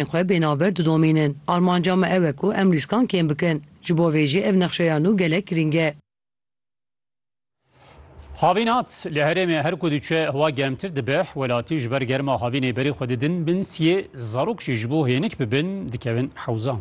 Em xwe bênaber didomînin. Armanca me ew e ku em rîskan kêm bikin. Ji bo vê jî ev nexşeya nû gelek girîng e. Havîn hat, li herêmê her ku diçe hewa germtir dibe, welatî ji ber germa havînê berê xwe didin bin siyê, zarok jî ji bo hênik bibin dikevin hewzan.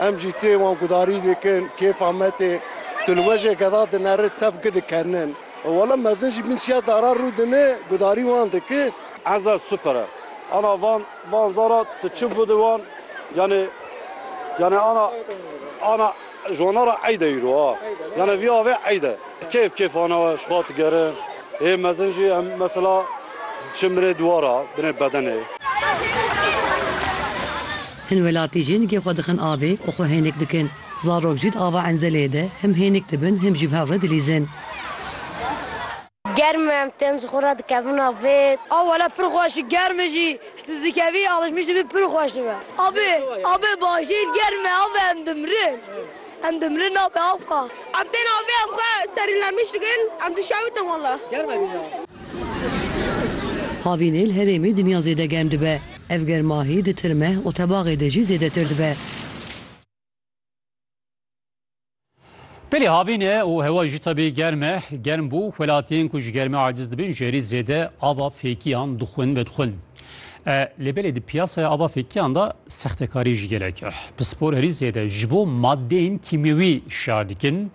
Em jî tê wan gudarî dikin, kêfa me tê. Tu li wejê geda dinerit, tev ki dikernin. Wele mezin jî min siya dara rû dine, gudarî wan dike. Eza super e. Ana van van zara tu çi bû di wan yanê yanê ana ana jona ra eyd e îro a. Yanê vî avê eyd e. Kêf kêfana we şiva digerin. Hê mezin jî em mesela çin binê dûwara, binê bedenê. Hin welatî jî nigê xwe dixin avê û xwe hênik dikin. Zarok jî di ava enzelê de him hênik dibin him jî bi hev re dilîzin. Germ e, em tên ji xwe re dikevin avê. A wele pir xweş e, germ e jî. Tu dikevî alişmiş dibî pir xweş dibe. Avê, avê bajêr germ e, avê em dimirin. Em dimirin avê avka. Em tên avê em xwe serînlemiş dikin, em dişewitin wele. Havînê li herêmê dinya zêde germ dibe. Ev germahî di tirme û tebaxê de jî zêdetir dibe. Pelê havîn e û hewa jî tevî germ e. Germ bû, welatiyên ku ji germê aciz dibin ji herî zêde ava fêkiyan dixwin vedixwin. Lê belê di piyasaya ava fêkiyan de sextekarî jî gelek e. Pispor herî zêde ji bo madeyên kîmyewî şiyar dikin.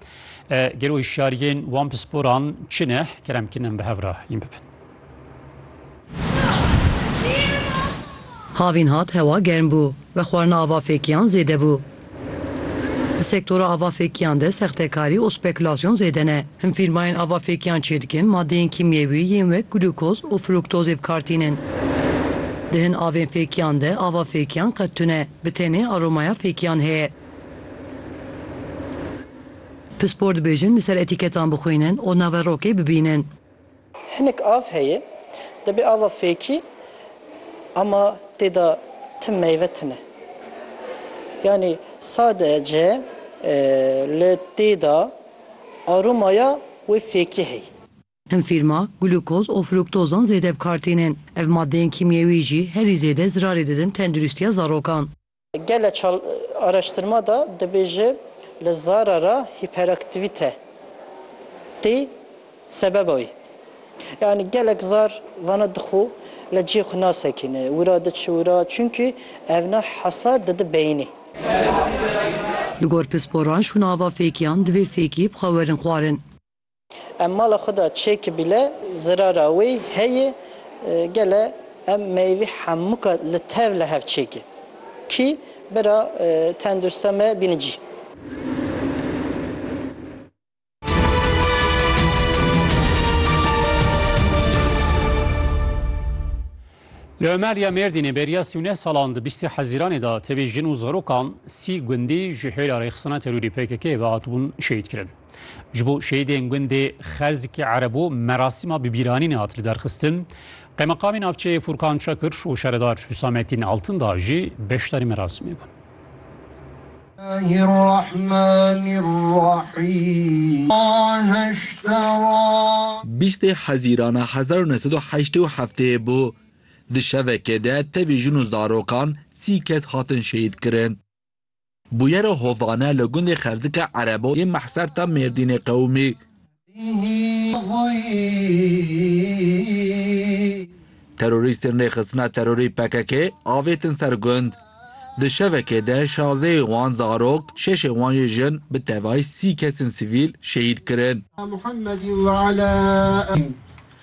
Gelo hişyariyên wan pisporan çi ne? Kerem Kinem bi hev re hîn bibin. Havîn hat hewa germ bû ve xwarina ava fêkiyan zêde bû. Di sektora ava fêkiyan de sextekarî û spekülasyon zêde ne. Him fîrmayên ava fêkiyan çêdikin madeyên kîmyewî yên wek glûkoz û frûktozê bi kar tînin. Di hin avên fêkiyan de ava fêkiyan qet tune bi tenê aromaya fêkiyan heye. Pispor dibêjin li ser etîketan bixwînin û naverokê bibînin. Hinek av heye, dibê ava fêkî ama tê de tim meyve tune. Yanî sadece li tê de aromaya wê fêkî heye. Hin fîrma glukoz û fruktozan zêde bi kar tînin. Ev maddeyên kîmyewî jî herî zêde zirarê didin tenduristiya zarokan. Gele çal araştırma de dibêje li zara re hîperaktivîte tê sebeba wî. Yanî gelek zar vana dixwe li cihê xwe nasekîne, wira diçi wira çunkî evna hesar dide beyînê. Li gor pisporan şûnava fêkiyan divê fêkî bi xwe werin xwarin. Em mala xwe de çêkî bîle zirara wê heye gele em meyvî hemûka li tev li hev çêkî kî bira tendursta me bîni cî. Li Omer ya Mêrdînê beriya sî û neh salan di bîstî hezîranê de tevî jin û zarokan sî gundî ji hêla rêxistina terorî PKK'ê ve hatibûn şehîdkirin. Ji bo şehîdên gundê Xerzikê Ereb û merasîma bibîranînê hat lidarxistin. Qeymeqamê navçeyê Furkan Çakir û şaredar Hüsamettin Altındağ jî beşdarî merasimê bûn. Bîstê Hezîrana hezar û neh sed û heştê û heftê bû. Di şevekê de tevî jin û zarokan sî kes hatin şehîdkirin. Bûyera Hovane li gundê Xerdika Erebo yê Mehserta Mêrdînê qewimî. Terorîstên Rêxistina Terorî PKK'ê avêtin ser gund. Di şevekê de şazdehê wan zarok, şeşê wan jî jin bi tevayî sî kesên sivîl şehîd kirin.